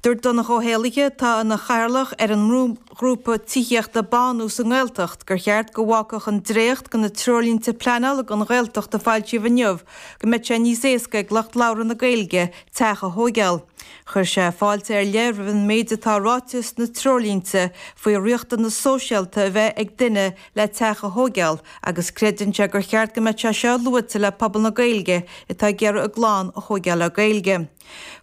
Dúirt Donncha Ó hÉallaithe, atá ina chathaoirleach ar an mbrúghrúpa tithíochta Bánú sa nGaeltacht, gur cheart go bhfágfadh an dréacht de na treoirlínte pleanála don Ghaeltacht a foilsíodh inniu go mbeadh sé níos éasca ag lucht labhartha na Gaeilge teach a thóigeáil. Chuir sé fáilte ar leith roimh an méid atá ráite sna treoirlínte faoi riachtanas sóisialta a bheith ag duine le teach a thóigeáil agus creideann sé gur cheart go mbeadh sé seo luaite le pobal na Gaeilge atá ag iarraidh a gclann a thóigeáil le Gaeilge.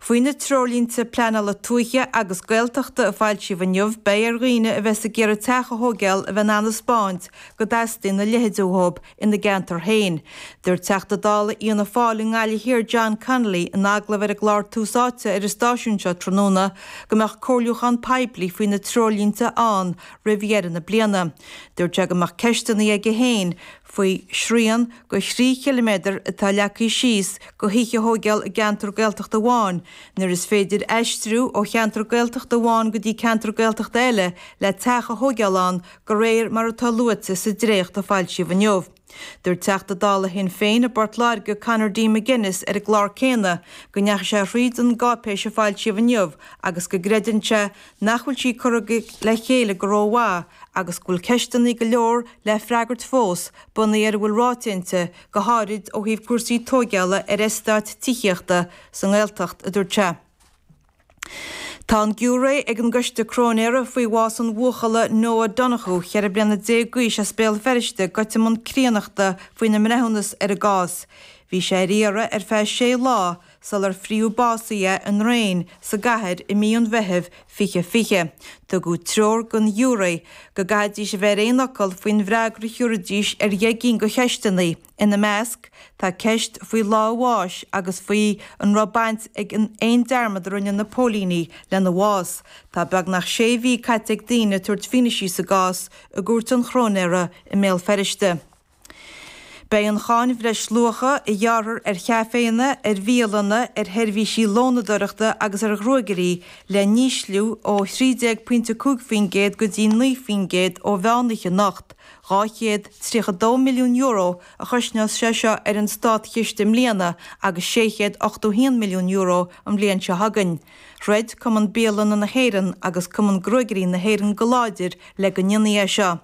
Faoi na Treoirlínte Pleanála Tuaithe agus Gaeltachta a foilsíodh inniu, beidh ar dhaoine a bheas ag iarraidh teach a thóigeáil a bheith in ann a 'speáint go dteastaíonn a leithéid uathub ina gceantar féin. Dúirt Teachta Dála Fhianna Fáil i nGaillimh Thiar John Connolly in agallamh ar an gclár Tús Áite ar an stáisiún seo tráthnóna go mbeadh comhairliúchán poiblí faoi na treoirlínte ann roimh dheireadh na bliana. Dúirt sé go mbeadh ceisteanna aige féin faoi shrian de thrí chiliméadar atá leagtha síos do thithe a thóigeáil i gceantar Gaeltachta amháin, nuair is féidir aistriú ó cheantar Gaeltachta amháin go dtí ceantar Gaeltachta eile le teach a thóigeáil ann de réir mar atá luaite sa dréacht a foilsíodh inniu. Dúirt Teachta Dála Shinn Féin i bPort Láirge Conor D. McGuinness ar an gclár céanna go ndeachaigh sé thríd an gcáipéis a foilsíodh inniu agus go gcreideann sé nach bhfuil sí curtha le chéile go rómhaith agus go bhfuil ceisteanna go leor le freagairt fós, bunaithe ar a bhfuil ráite inti, go háirid ó thaobh cúrsaí tóigeála ar eastáit tithíochta sa nGaeltacht, a dúirt sé. Tá an giúiré ag an gcoiste cróinéara faoi bhás an bhuachalla Noah Donohoe, cheithre bliana déag d'aois as Béal Feirste, goite i mbun críonnachta faoina mbreithiúnas ar an gcás. Bhí sé ar iarraidh ar feadh sé lá, sular frítheadh básaithe é i ndraein sa gcathair i mí an Mheithimh 2020, tugadh treoir don ghiúré go gcaithfidís a bheith ar aon fhocal faoin bhfreagra a thiúrfaidís ar dheich gcinn de cheisteanna, ina measc tá ceist faoi lá a bháis agus faoi an raibh baint ag an aon dearmad a rinne na póilíní lena bhás. Tá beagnach sé mhí caite ag daoine ag tabhairt fianaise sa gcás i gCúirt an Chróinéara i mBéal Feirste. Beidh an cháin bhreisluacha, a ghearrthar ar chaiféanna, ar bhialanna, ar sheirbhísí lónadóireachta agus ar ghruaigairí, le n-ísliú ó 13.5 faoin gcéad go dtí 9 faoin gcéad ó mheánoíche anocht. €232 milliún a chosnós sé seo ar an státchiste i mbliana agus €681 milliún an bhliain seo chugainn. Throid Cumann Bialanna na hÉireann agus Cumann Gruaigairí na hÉireann go láidir le go ndéanfaí é seo.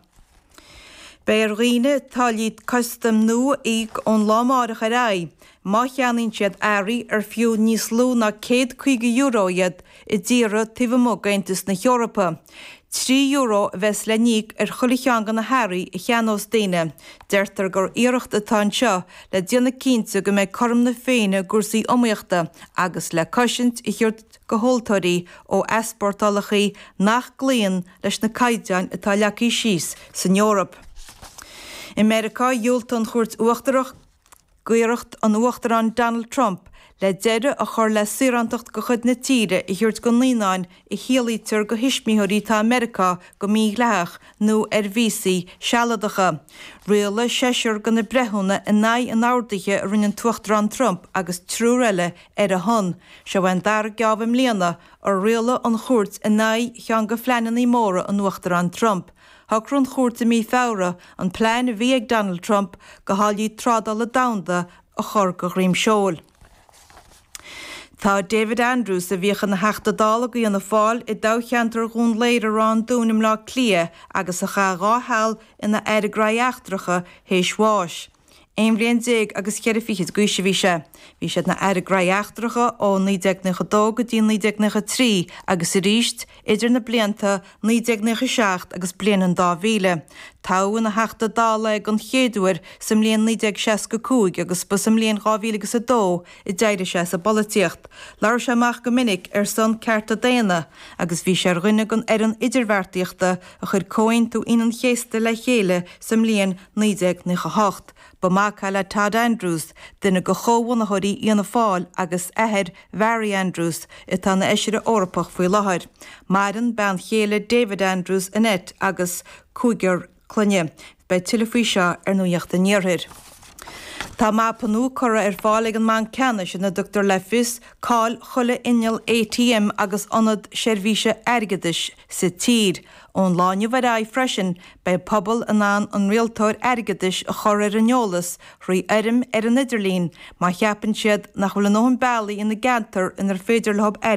Beidh ar dhaoine táillí custaim nua a íoc ón lá amárach ar aghaidh má cheannaíonn siad earraí ar fiú níos lú ná €150 iad i dtíortha taobh amuigh d'Aontas na hEorpa. Trí euro a bheas le n-íoc ar chuile cheann de na hearraí a cheannós daoine. Deirtear gur iarracht atá anseo le déanamh cinnte go mbeidh cothrom na Féinne i gcúrsaí iomaíochta agus le cosaint a thabhairt do thomhaltóirí ó easpórtálacha nach gcloíonn leis na caighdeáin atá leagtha síos san Eoraip. I Meiriceá, dhiúltaigh an Chúirt Uachtarach d'iarracht an Uachtaráin Donald Trump le deireadh a chur le saorántacht de chuid na tíre a thabhairt do naíonáin a shaolaítear do thuismitheoirí atá i Meiriceá go mídhleathach nó ar víosaí sealadacha. Rialaigh seisear de na breithiúna in aghaidh an ordaithe a rinne an tUachtarán Trump agus triúr eile ar a shon. Seo é an dara geábh i mbliana A rialaigh an chúirt in aghaidh cheann de phleananna móra an Uachtaráin Trump? Shocraigh an chúirt i mí Feabhra an plean bhí ag Donald Trump do tháillí trádála domhanda a chur de dhroim seoil. Tá David Andrews, a bhíodh ina Theachta Dála do Fhianna Fáil i dtoghcheantar Dhún Laoghaire Ráth an Dúin i mBleá Cliath agus a chaith dhá sheal ina Aire Gnóthaí Eachtracha tar éis bháis, Aon bhliain déag agus cheithre fichid d'aois a bhí sé. Bhí sé ina Aire Gnóthaí Eachtracha ó 1992 go dtí 1993 agus arís idir na blianta 1997 agus bliain an dá mhíle. Toghadh ina Theachta Dála é den chéad uair sa mbliain 1965 agus ba sa mbliain dhá mhíle agus a dó a d'éirigh sé as an bpolaitíocht. Labhair sé amach go minic ar son cearta daonna agus bhí sé ar dhuine den fhoireann idirbheartaíochta a chuir Comhaontú Aoine an Chéasta le chéile sa mbliain 1998. Ba mhac é le Tod Andrews, duine de chomhbhunaitheoirí Fhianna Fáil, agus athair Bharry Andrews, atá ina Fheisire Eorpach faoi láthair. Maireann bean chéile David Andrews, Annette, agus cúigear clainne. Beidh tuilleadh faoi seo ar Nuacht an Iarthair. Tá mapa nua curtha ar fáil ag an mBanc Ceannais ina dtugtar le fios cá bhfuil chuile inneall ATM agus ionad seirbhíse airgeadais sa tír. Ón lá inniu ar aghaidh freisin, beidh pobail in ann an rialtóir airgeadais a chur ar an eolas trí fhoirm ar an idirlíon má cheapann siad nach bhfuil a ndóthain bealaí ina gceantar inar féidir leo airgead a